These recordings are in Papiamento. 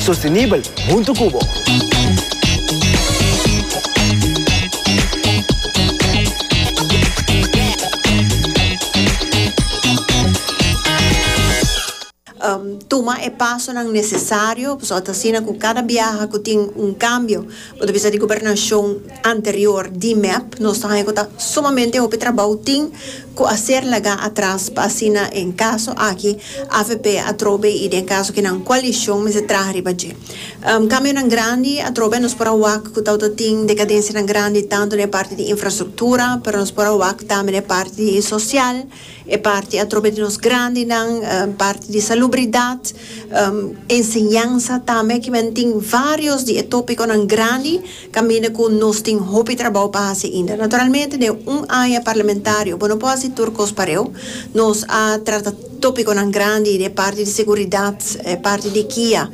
Sostenibel huntu cu bo. Tuma e pasonan necesario, pasobra ta asina cu cada biaha cu tin un cambio bo ta bisa di Gobernacion. anterior di mep nos ta haña cu ta sumamente hopi trabou tin cu a ser laga atras pa asina en caso aki avp atrobe y den caso que nan coalicion mester traha riba dje cambionan grandi atrobe nos por a wak cu ta auto tin decadencianan grandi tanto na e parti di infrastructura pero nos por a wak tambe na e parti di social e parti atrobe di nos grandinan parti di salubridad enseñansa tambe kimen tin varios di e topiconan grandi. Caminda cu nos tin hopi trabao pa haci inda. Naturalmente den un aña parlamentario bo no por haci tur cos pareu. Nos a trata topiconan grandi den e parti di seguridad, e parti di kia,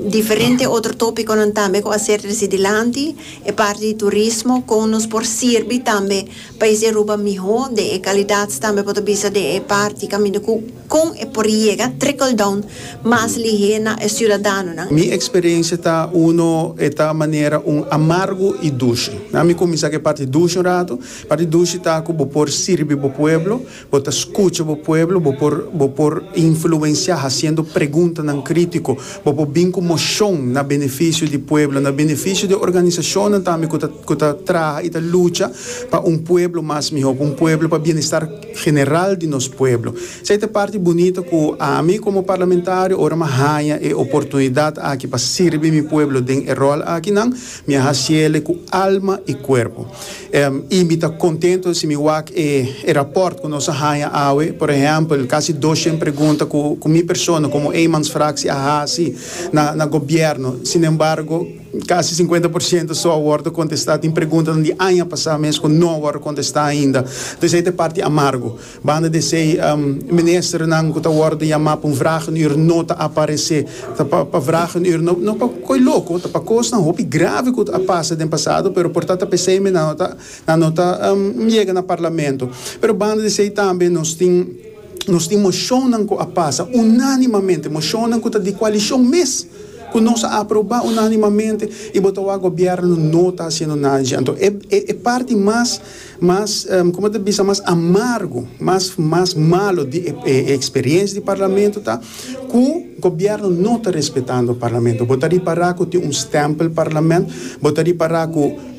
diferente otro topiconan tambe cu a ser treci dilanti, e parti di turismo, con nos por sirbi tambe pais di Aruba miho den e calidad tambe bo ta bisa den e parti caminda cu. Kon e por yega trickle down mas lihé na e siudadanonan? Mi eksperensia ta, uno, e ta manera un amargu i dushi. Na mi kuminsá ku e parti dushi un ratu. E parti dushi ta ku bo por sirbi bo pueblo, bo ta skucha bo pueblo, bo por bo por influensiá hasiendo preguntanan krítiko, bo por bin ku moshon na benefisio di pueblo, na benefisio di e organisashonnan tambe ku ta ku ta traha i ta lucha pa un pueblo mas mihó, pa un pueblo pa bienestar. general di nos pueblo. Esei ta parti bunita cu ami como parlamentario ora m'a haña e oportunidad aki pa sirbi mi pueblo den e rol akinan, mi a haciele cu alma y cuerpo. Em y mi ta contento si mi wak e e rapport cu nos a haña awe, por ehempel casi doshent pregunta cu cu mi persona como eenmansfractie a haci na na gobierno, sinembargo, Kasi sinkuenta por siento so a wòrdu kontestá. Tin preguntanan di aña pasá mes ku no a wòrdu kontestá ainda. Pues ei ta e parti amargu. Banda di esei, ministernan ku ta wòrdu yamá pa un vragenür no ta aparesé. Ta pa pa vragenür, no no pa ko'i loko, ta pa kosnan hopi grave ku a pasa den pasado, pero por ta ta p'esei mi nan no ta nan no ta yega na parlamento. Pero banda di esei tambe nos tin. Nos tin mocionnan cu a pasa unánimamente, mocionnan cu ta di coalicion mes, cu nos a aproba unánimamente y bo ta wak gobierno no ta haciendo nada di dje. Anto e e parti mas mas como ta bisa mas amargo, mas mas malo di e e experiencia di Parlamento ta cu gobierno no ta respetando Parlamento. Bo ta ripara cu tin un stempel Parlament, bo ta ripara cu.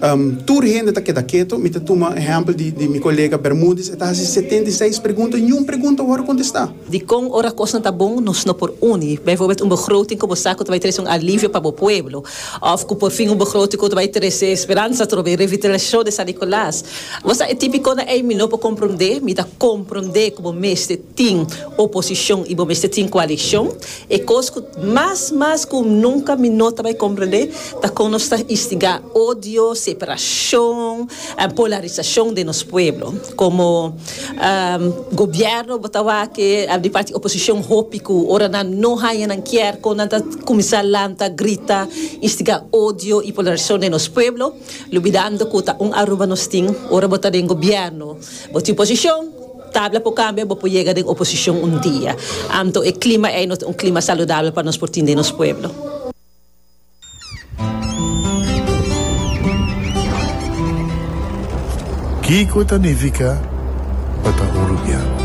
Tur hende ta keda keto. Mi ta tuma ehèmpel di mi kolega Bermudez. E ta hasi setenta i seis pregunta i ni un pregunta wòrdu kontestá. Dikon ora kosnan ta bon nos no por uni? Bijvoorbeeld un begroting ku bo sa ku ta bai trese un alivio pa bo pueblo òf ku por fin un begroting ku ta bai trese speransa atrob'e revitalisashon di San Nikolaas. Bo sa e típikonan ei mi no por komprondé. Mi ta komprondé ku bo mester. Tin oposicion y bo mester tin coalicion. E cos cu mas mas cu nunca mi no ta bay comprende ta con nos ta instiga odio, separacion, polarisacion den nos pueblo. Como gobierno bo ta wak di parti oposicion hopi cu ora nan no haya nan kier con nan ta cuminsa lanta, grita, instiga odio y polarisacion den nos pueblo, lubidando cu ta un Aruba nos tin. Ora bo ta den gobierno bo tin posicion. Tabla por cambia, bo por yega den oposicion un dia. Anto e clima ey no ta un clima saludabel pa nos por tin den nos pueblo. Kico ta nifica pa ta uruguiano?